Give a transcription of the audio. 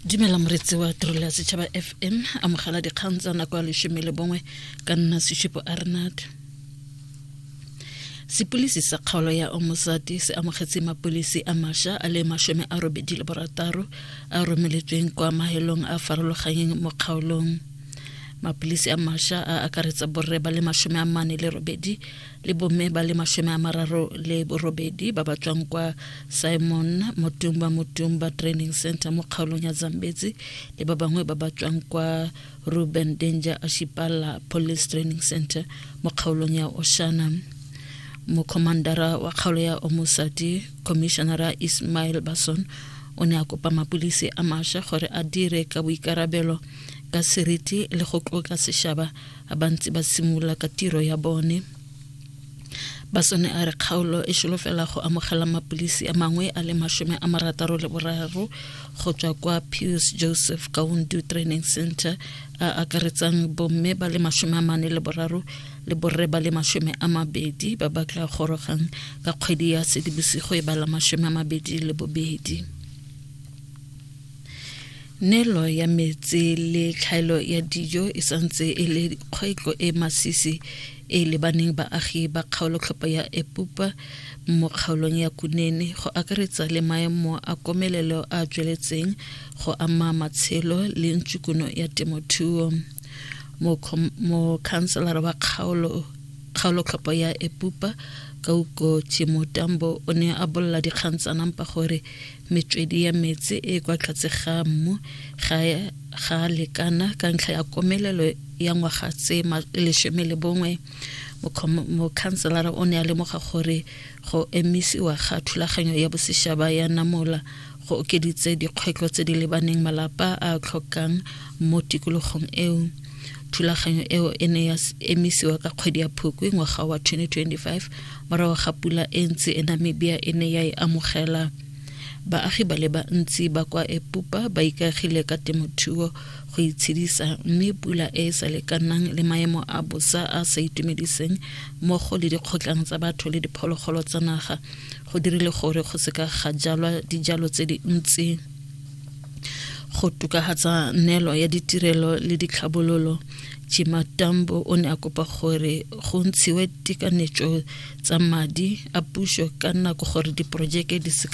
dumela moretsi wa tirelo ya setšhaba fm amogela dikgang tsa nako ya lesome le bongwe ka nna sesupo arnad sepilisi sa kgaolo ya omosati se amogetse mapilisi a masha a le masome a robedi le borataro a romeletsweng kwa mahelong a farologanyeng mo kgaolong mapilisi a masha a akaretsa borre ba le masome a mane le robedi le bomme ba le masome a mararo le borobedi ba ba tswang kwa simon motumba motumba training center mo kgaolong ya zambetsi le ba bangwe ba ba tswang kwa ruben danger ashipala police training center mo kgaolong ya oshana mokhomandara wa kgaolo ya omosadi commissionara ismail bason o ne a kopa mapodisi a masha gore a dire ka boikarabelo ka seriti le go tloka sešaba a ba ntse ba simolola ka tiro ya bone basone a re kgaolo e solofela go amogela mapilisi a mangwe a le masome a marataro le boraro go tswa kwa pius joseph kaundu training center a akaretsang bomme ba le masome a mane le boraro le borre ba le masome a mabedi ba ba tla gorogang ka kgwedi ya sedibosigo e ba la masome a mabedi le bobedi Nelo ya metsi le tlhaelo ya dijo e santse e le kgwetlho e masisi e lebaneng baagi ba kgaolotlhopho ya Epupa mo kgaolong ya Kunene go akaretsa le maemo a komelelo a tsweletseng go ama matshelo le ntshukuno ya temothuo mokhanselara wa kgaolo kgaolotlhopho ya Epupa Kauko Chimutambo o ne a bolla dikgang tsa nampa gore metswedi ya metsi e kwa tlhatse ga mmu ga ga lekana ka ntlha ya komelelo ya ngwaga tse lesome le bongwe mokhanselara o ne a lemoga gore go emisiwa ga thulaganyo ya bosešaba ya namola go okeditse dikgwetlho tse di lebaneng malapa a tlhokang mo tikologong eo thulaganyo eo e ne ya emisiwa ka kgwedi ya phukwi ngwaga wa 2025 Morago ga pula e ntsi e Namibia e ne ya e amogela, baagi ba le bantsi ba kwa Epupa ba ikagile ka temothuo go itshedisa mme pula e e sa lekanang le maemo a bosa a sa itumediseng mmogo le dikgotlang tsa batho le diphologolo tsa naga go dirile gore go seka ga jalwa dijalo tse dintsi go tokagatsa neelo ya ditirelo le ditlhabololo chimatambo o ne a kopa gore go ntshiwe tekanetso tsa madi a puso ka nako gore diporojeke di seka